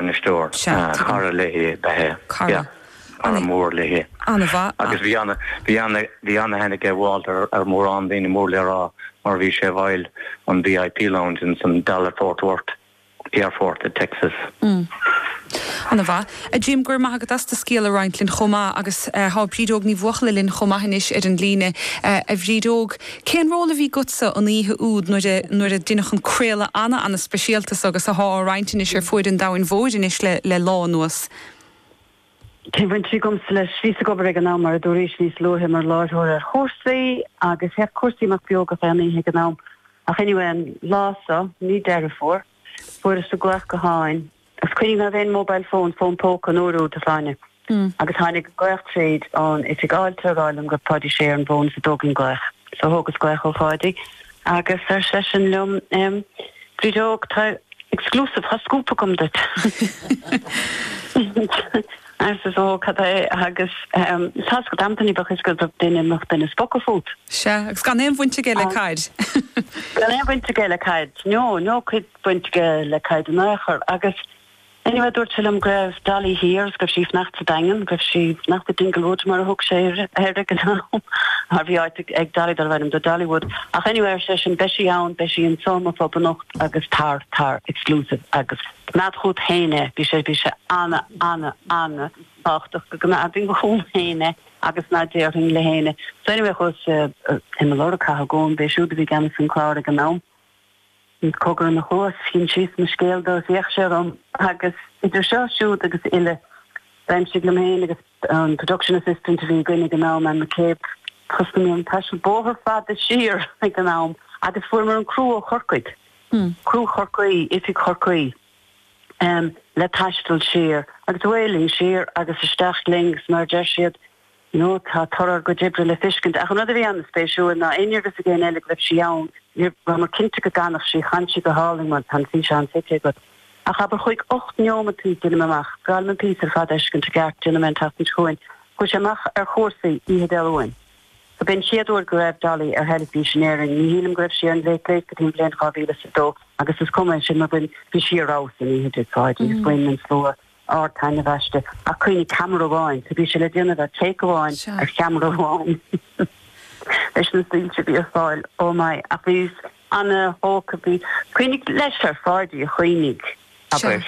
bainisteoir. Sea, tuigim. Cara léi ab ea é. Cara. Yeah. Cara mór léi. Ana-mhaith. Agus bhí ana, bhí ana, bhí ana-aithne aige Walter ar mhórán daoine mór le rá mar bhí sé i bhfeighil an VIP Lounge ins an Dallas Fort Worth, aerfort i dTexas. Mm. Ana-mhaith. A Jim, go raibh maith agat as do scéal a roinnt linn chomh maith agus eh, tá Bríd Óg Ní Bhuachalla linn chomh maith anois ar an líne. Eh, a Bhríd Óg, Cén ról a bhí agatsa an oíche úd nuair a, nuair a deineadh an craoladh ana, ana speisialta so agus athá á roinnt anois ar fuaid an domhain mhóir anois le, le lá anuas? Cén bhaint a bhí agamsa leis? Bhíos ag obair ag an am, mar a dúraís níos luaithe, mar láithreoir ar Chúrsaí agus théadh Cúrsaí amach beo gach aon oíche ag an am. Ach anyway, an lá so, mí Deireadh Fómhair, fuaireas an glaoch gutháin. Cuimhnigh ná raibh aon mobile phone, fón póca, an uair úd, a Shláine, agus tháinig glaoch tríd ón oifig fháilte ag rá liom go raibh Páidí Sé ar an bhfón is an dtógfainn glaoch. So thógas glaoch ó Pháidí agus ar seisean liom, em, Bríd Óg, tá exclusive, tá scúp agam duit. arsa so cad é agus, em, seas go dtí b'fh is go raibh duine, mach duine spoke fút. Sea, agus gan aon bhaint aige le caid. Gan aon bhaint aige le caid, no, no, caid. baint aige le Caid in aon chor. Agus anyway, dúirt sé liom go raibh Dolly thiar is go raibh sí ag fanacht sa Daingean, go raibh sí ag fanacht i Dinglewood mar a thug sé air ag an am, mar bhí áit ag Dolly darbh ainm di Dollywood. Ach anyway, ar seisean, beidh sí ann, beidh sí anseo i mo phub anocht agus tar, tar, exclusive, agus coimeád chugat féin é. Bhí sé, bhí sé ana, ana, ana thábhachtach go gcoimeádfainn chugam féin é agus ná déarfainn le héinne. So anyway, chuas, bhí mé ag lorg Cathal Goan, b'é siúd a bhí i gceannas an chláir ag an am. Bhí cogar ina chluas, d'insíos mo scéal dó is d'fhéach sé orm agus idir seo, siúd agus uile, d'aimsigh liom féin agus an production assistant a bhí againn ag an am, Anne McCabe, thosnaigh mé an taisteal bóthar fada siar ag an am agus fuaireamar an criú ó Chorcaigh, criú Chorcaí, Oifig Chorcaí, em, le taisteal siar agus away linn, siar agus isteach linn agus mar a deir siad, No, tá toradh ár gcuid oibre le feiscint, ach an rud a bhí an-spéisiúil ná ná raibh a fhios ag éinne eile go raibh sí ann, ní rabhamar cinnte go gcanfadh sí, chan sí go hálainn mar tá an físeán feicthe agat, ach abair cúig, ocht neomataí, deinim amach, caithfidh mé an píosa ar fad a fheiscint i gceart, déanfaidh mé an tseachtain seo chugainn, chuaigh sé amach ar Chúrsaí, oíche Dé Luain. So b'é an chéad uair go raibh Dolly ar theilifís in Éirinn, ní shílim go raibh sí ar an Late Late go dtí an bhliain 2002 agus is cuma, sin mar b'in, bhí sí ar fheabhas an oíche úd tigh Pháidí, agus bhain an slua. ardtaitneamh aisti. Ach cuimhnigh, ceamara amháin, so bhí sé le déanamh ar take amháin, ar cheamara amháin, leis na soilse a bhí ar fáil. Oh my, ach bhíos ana-thógtha, bhí, cuimhnigh, leis ar Pháidí ach cuimhnigh, abair,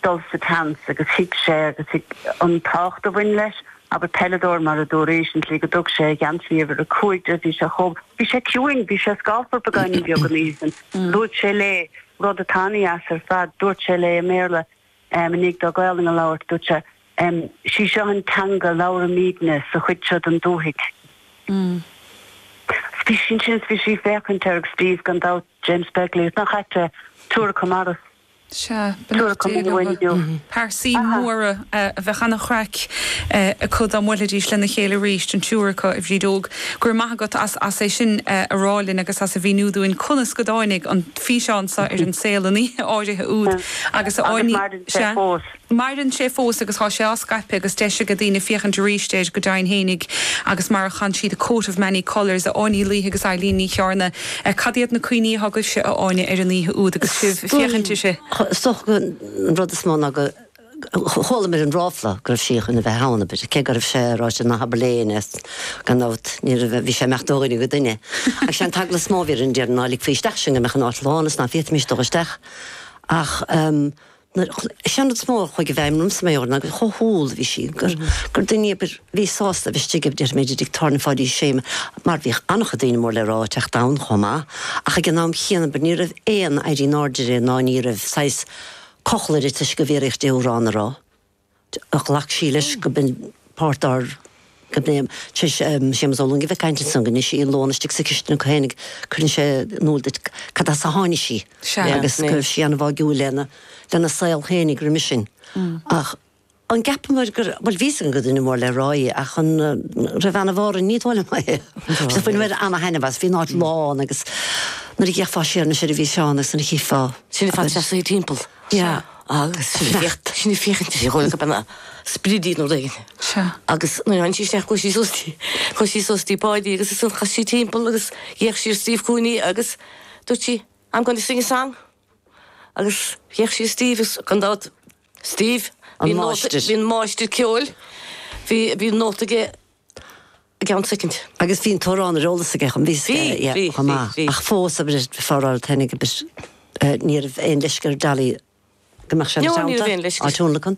dul sa tseans agus thuig sé agus thuig an tábhacht a bhain leis, abair, peileadóir mar a dúradh recently go dtug sé a gheansaí uimhir a cúig di, bhí sé chomh, bhí sé ciúin, bhí sé scáfar beagáinín beag an oíche sin, dúirt sé léi. rud a thaitnigh as ar fad, dúirt sé léi i mBéarla i ndiaidh dó Gaolainn a labhairt, dúirt sé, Sí seo an teanga a labhraímídne sa chuid seo den dúthaigh. Bhí sí ansin is bhí sí ag féachaint air agus bhí, gan dabht, James Begley, is nach ait é, triúr acu marbh anois, Sea, ba tabhair nach acu déigh liom inniu. Pearsaí móra a bheadh an-chraic acu dá mbuailfidís lena chéile arís, an triúr acu, a Bhríd Óg. Go raibh maith agat as é sin a rá linn agus as a mhíniú dúinn conas go dtáinig an. físeán seo ar an saol an oíche áirithe úd agus a Agus maireann sé sea. fós. Maireann sé fós agus tá sé á scaipeadh agus deis aige daoine féachaint arís air go deimhin fhéinig agus mar a chan siad The Coat of Many Colours, a Áine Uí Laoithe agus Eilín Ní Chearna. Cad iad na cuimhní atá agaibhse, a Áine, ar an oíche úd agus sibh ag féachaint uirthi? Is dócha an rud is mó ná go. Chualamir an ráfla go raibh sí chun a bheith ann, abair, cé go raibh sé ráite ná habair le héinne é, gan dabht, ní raibh, bhí sé ag imeacht ó dhuine go duine. Ach sé an t-eagla is mó bhí orainn, déarfainn, ná ligfí isteach sinn go mbeadh an áit lán is nach bhféadfaimis dul isteach. Ach nuair, sé an rud is mó a chuaigh i bhfeidhm ormsa, mé ná gur chomh humhal a bhí sí, gur, gur duine í, abair, a bhí sásta a bheith istigh, abair, déarfaimid, i dtigh tábhairne Pháidí Ó Sé, mar bhíodh an-chuid daoine mór le rá ag teacht ann chomh maith, ach ag an am chéanna, abair, ní raibh aon éirí in airde léi ná ní raibh saghas, cochall uirthi toisc go bhfiafraíodh di amhrán a rá. Ghlac sí leis go mb'in páirt dár go mbeinn im. Sé Séamus Ó Luing a bhí ag caint ansan go ndein sí an lón istigh sa chistin acu féinig cuireann sé in iúl duit cad as a tháinig sí agus go raibh sí ana bháigiúil lena saol féinig roimis sin ach an gceapamair gur, bhuel, bhí a fhios againn go duine mór le rá é ach an raibh ana bharr an ní dóigh liom é. Sea, bhain mé ana thaitneamh as, bhí an áit lán agus nuair a d'fhéachfá siar anois air a bhí Seán agus nuair a chífeá, Sin le fada teasaí timpeall. Sea. Agus sneachta. Sinn ag féachaint ar dhóigh go mbeadh na spridí nó rud éigin. Sea. Agus nuair a tháinig sí isteach chuaigh sí suas dtí, chuaigh sí suas dtí Páidí agus ansan chas sí timpeall agus d'fhéach sí ar Steve Cooney agus dúirt sí, I'm gonna sing a song. Agus d'fhéach sí Steve is gan dabht Steve, bhí máistir, bhí an máistir ceoil, bhí bhí nóta aige i gceann soicind. Agus bhí an t-amhrán ar eolas aige chomh maith. Bhí, bhí, bhí, bhí. Ach fós a bhris foráil féinig, abair, ní raibh aon leisce ar Dolly go mbeadh sé ina teannta á tionlacan.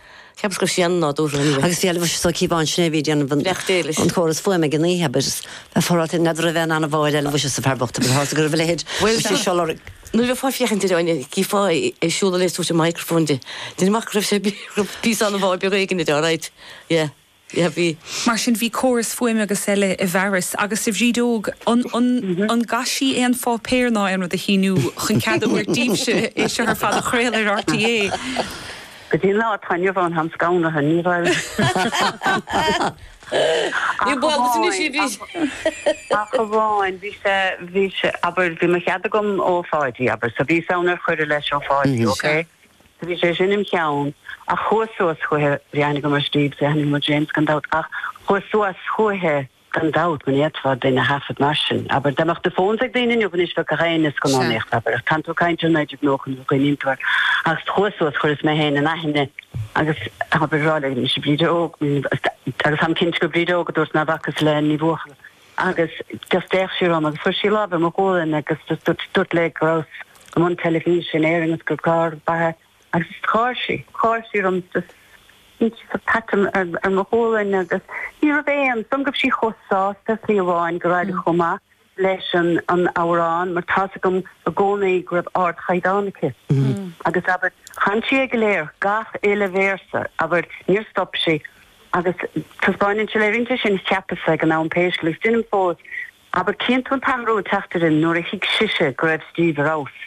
Cheapas go raibh sin ana nádúrtha. Agus bhí Elvis so Keep On sin é bhí ag déanamh an Leacht Éilis. an córas fuaime ag an oíche abair is bheith forráite ag nead roimh bheith in ann a bhfáil Elvis is a fear bocht bhí thart go raibh a leithéid Bhuel bhí sé tá, siolar ag nuair a bheifeá ag féachaint ar an gcífeá ag siúl a léasú sé microphone di, déanaim amach go raibh sé ag raibh píosa anbhá beag éigin idir, alright, yeah. Yeah, bhí. Mar sin bhí córas fuaime agus eile i bhfearas agus a Bhríd Óg an, an, ar chaith sí aon pháipéar ná aon rud a shíniú chun cead a thabhairt díbhse é seo ar fad a chraol ar RTÉ? Go dtí an lá atá inniu ann táim scamhnaithe, ní raibh. Níl bua agaibhse anois, a Bhríd. Ach amháin, bhí sé, bhí sé, abair, bhí mo chead agam ó Pháidí, abair, so bhíos ann ar cuireadh leis ó Pháidí, okay? So bhí sé sin im' cheann ach chuas suas chuici, bhí aithne agam ar Steve so d'aithníos James gan dabht ach chuas suas chuici, gan dabht ní fhéadfá duine a thaifead mar sin, abair dá mbeadh do phones ag daoine inniu anois bheadh gach éinne scan ón éacht abair ach cantal cainte ó 1990 nuair a chuimhníonn tú air ach chuas suas chuireas mé féin in aithne agus abair dúrt léi mise Bríd Óg agus táim cinnte gur Bríd Óg a dúrt níor bhacas le Ní Bhuachalla. agus just d'fhéach sí orm agus chuir sí lámh ar mo ghualainn agus just dúrt, dúrt léi go rabhas i mbun teilifíse in Éirinn agus gur carr a b'ea agus just gháir sí, gháir sí orm just sin just ag tapáil ar, ar mo ghualainn agus ní raibh aon, dom go raibh sí chomh sásta is ní amháin go raibh chomh maith leis an, an amhrán mar tá's agam i gcónaí go raibh ardchaighdeán aici agus abair chan sí é go léir, gach uile véarsa abair níor stop sí. Agus taispeáineann sé le rince sin, cheapas-sa ag an am pé scéal é, agus deinim fós, abair chíonn tú an t-athrú ag teacht uirthi nuair a thuig sise go raibh Steve ar fheabhas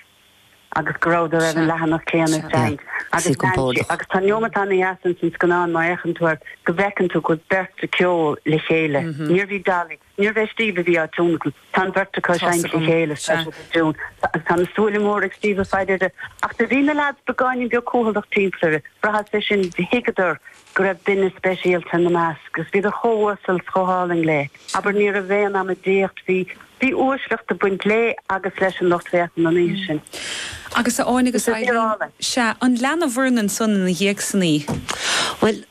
agus go rabhadar ar an leathanach céanna ag tarraingt. Agus lean sí, Agus tá neomat ana-dheas ins an scannán, má fhéachann tú air, go bhfeiceann tú go bhfuil an bheirt acu ag ceol le chéile. Níorbh í Dolly. Níorbh é Steve a bhí á tionlacan. Tá an bheirt acu ag seinnt le chéile, agus tá siad i dtiún, agus tá na súile móra ag Steve ag faire uirthi. Ach do bhí na leaids beagáinín beag cúthaileach timpeall uirthi. Bhraitheas é sin, thuigeadar go raibh duine speisialta ina measc, agus bhíodar chomh uasal 's chomh hálainn léi. Abair, ní raibh aon amaideacht, bhí uaisleacht ag baint léi agus leis an lucht féachana an oíche sin. Agus a Áine agus Eileen, sea, ar lean sibh uirthi ansan ina dhiaidh san? Bhuel,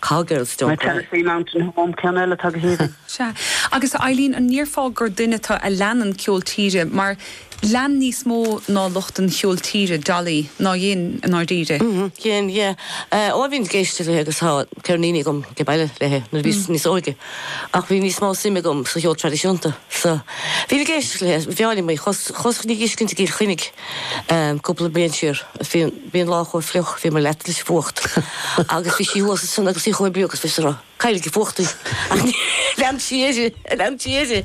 Coat of Many Colors. Tennessee Mountain Home ceann eile atá go haoibhinn. Sea. Agus a Eileen, an ndéarfá gur duine tú a leanann ceol tíre, mar lean níos mó ná lucht an cheoil tíre, Dolly, ná dhein, i ndáiríre? Dhein, yeah. Ó, bhínn ag éisteacht léi agus tá ceirníní agam ag baile léi, nuair a bhíos níos óige. Ach bhí níos mó suime agam sa cheol traidisiúnta. So, bhínn ag éisteacht léi, b'áil liom í. Chuas, chuas á fiscint i gCill Chainnigh cúpla bliain siar. bhí an lá chomh fliuch, bhíomar leata leis an bhfuacht agus bhí sí thuas ansin agus í chomh bríomhar agus bhíos-sa caillte ag an bhfuacht ach lean sí uirthi, lean sí uirthi,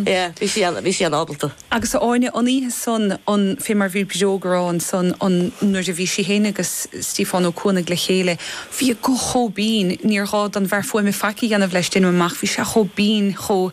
yeah, bhí sí ann, bhí sí an-ábalta. Agus a Áine, an oíche san, an, fé mar bhí Bríd Óg á rá ansan, an, nuair a bhí sí féin agus Stiofán Ó Cuanaigh le chéile, bhí a guth chomh binn, níor ghá don bhfear fuaime faic a dhéanamh leis, deinim amach, bhí sé chomh binn, chomh,